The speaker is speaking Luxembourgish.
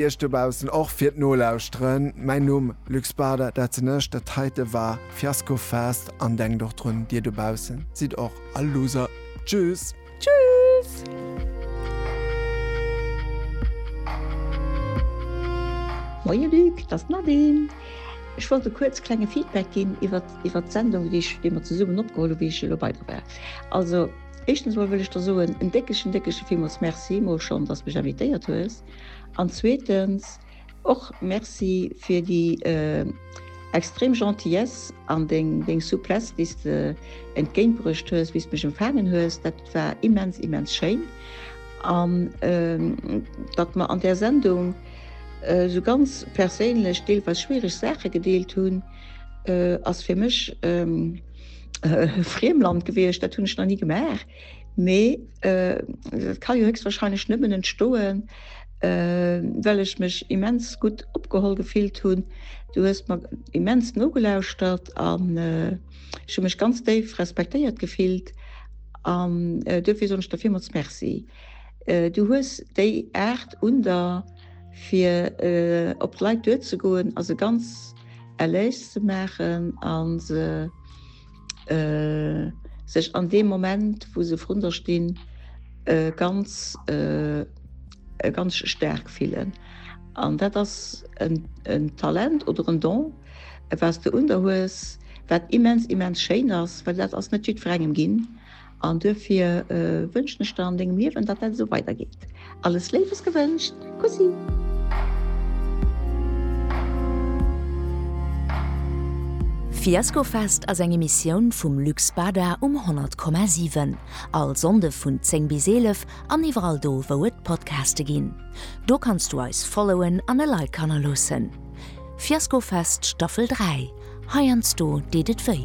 Iech dobaussen och fir d'Nolauschteren. Mäin Numm, Luc Spada, dat sinn ech. Dat heite war Fiasko Fest an denkt och drun, dir dobaussen sidd och all Loser. Tschüss! Tschüss! Moien Luc, dat ass d'Nadine. Ech wollt e kuerze klenge Feedback ginn iwwer, iwwer d'Sendung, déi ech, déi mer zesummen opgeholl hu wéi ech elo bei der war. Also éischtens emol wëll ech der soen en déckegen, déckege villmools Merci emol schonn, dass de mech invitéiert hues. An zweetens och Merci fir déi extrem Gentillesse an deng Souplesse, déi s de entgéintbruecht hues, wéi s mech empfaangen hues. Dat war immens, immens schéin. An datt mer an där Sendung esou ganz perséinlech, deelweis schwiereg Saache gedeelt hunn, ass fir mech e Friemland gewiescht. Dat hunn ech nach ni gemaach. Mee dat ka jo héchstwahrscheinlech nëmmen entstoen, well ech mech immens gutt opgeholl gefillt hunn. Du hues mer immens nogelauschert an ech hu mech ganz déif respektéiert gefillt an duerfir soen ech der villmools Merci. Du hues déi Aart un der, fir op d'Leit duerzegoen a se ganz à l'aise ze maachen a se, sech an deem Moment wou se vrun der stinn ganz ganz staark fillen. An dat ass en Talent oder en Don was de un der hues, wat immens immens schéin ass, well dat ass net jiddwerengem ginn. An duerfir wënschen ech der an dengem Liewen, datt dat esou weider geet. Alles Léiwes gewënscht. Kussi. Fiaskofest ass eng Emissioun vum Luc Spada um 100,7. All Sonnde vun 10 bis 11 an iwwerall do wou et Podcaste ginn. Do kanns du eis followen an e Like hannerloossen. Fiaskofest Staffel 3, heiansdo deet et wéi.